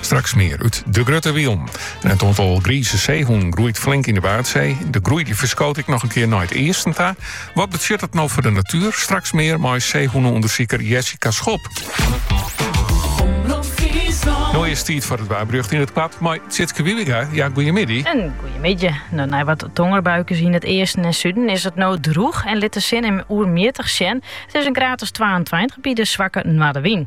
Straks mear út De Grutte Wielm. En it oantal grize seehûnen groeit flink yn de Waadsee. De groei die ferskoot ek noch in kear nei it easten ta. Wat betsjut dat no foar de natuer? Straks mear mei seehûneûndersiker Jessica Schop. No is 't tiid foar it waarberjocht yn it koart mei Sytske Wiebenga, ja, goeiemiddei. Goeiemiddei. No, nei wat tongerbuikes yn it easten en suden is it no droech en lit de sinne him regelmjittich sjen. It is in graad as 22 by in swakke noardewyn.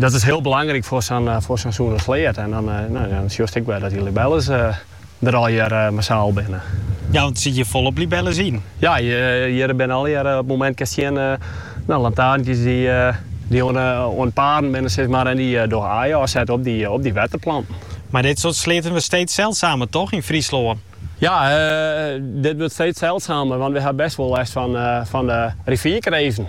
Dat is hiel belangryk foar sa'n sûne sleat. En dan sjochst ek wer dat dy libelles der allegear massaal binne. Ja, want der sit hjir folop libelles yn. Ja, hjir binne allegear op it momint kinst sjen lantaarntjes dy't oan it pearjen binne sis mar en dy dogge aaien ôfsette op dy wetterplanten. Mar dit soarte sleaten wurdt steeds seldsamer toch yn Fryslân? Ja, dit wurdt steeds seldsamer want we ha bêst wol lêst fan de rivierkreeften.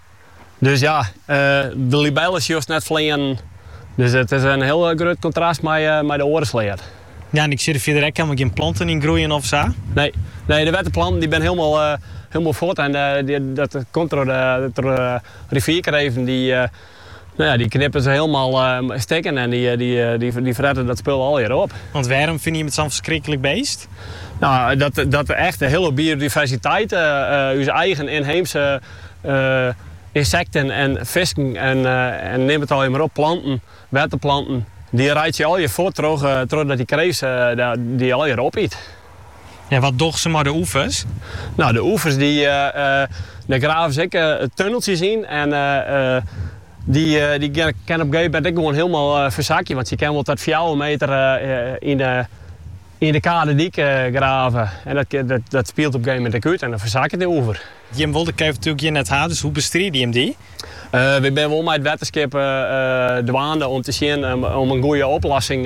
Dus ja, de libellen sjochst net fleanen. Dus it is in hiel grut kontrast mei de oare sleat. Ja, en ik zie der fierder ek helemaal geen planten in groeien of sa? Nee, nee, de wette planten die ben helemaal, helemaal fuort en dat komt door de rivierkreven die, nou ja, die knippen ze helemaal stikken en die fretten dat spul allegear op. Want waarom vind je het zo'n verschrikkelijk beest? Nou, dat, dat echt de hele biodiversiteit, onze eigen inheemse Ynsekten en fisken en neam it allegear mar op, planten, wetterplanten, dy reitsje allegear fuort trochdat dy kreeft dy allegear opyt. En wat dogge se mei de oevers? No, de oevers dêr grave se ek tunneltsjes yn en dy kin op in gegeven moment ek gewoan hielendal fersakje, want sy kin wol ta fjouwer meter yn de. Yn de kadedyk grave en dat spielt op in gegeven moment ek út en dan fersaket de oever. Jim wolle de kreeft natuerlik hjir net ha, dus hoe bestride jim dy? Wy binne wol mei it wetterskip dwaande om te sjen om in goede oplossing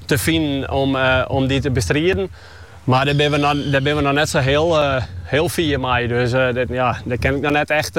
te finen om dy te bestriden. Mar dêr binne we noch net sa hiel fier mei, dus dêr kin ik noch net echt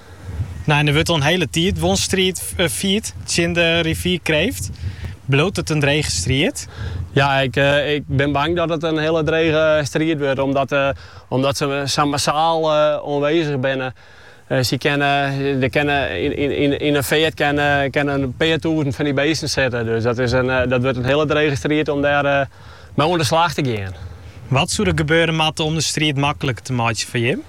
Nee, der wurdt al in hiele tiid wol striid fierd tsjin de rivierkreeft. Bliuwt it in drege striid? Ja, ik bin bang dat it in hiele drege striid wurdt, omdat se sa massaal oanwezich binne. Der kinne yn in feart kinne in pear tûzen fan dy beesten sitte. Dus dat wurdt in hiele drege striid om dêr mei oan de slach te gean. Wat soe der gebeure moatte om de striid makliker te meitsjen foar jim?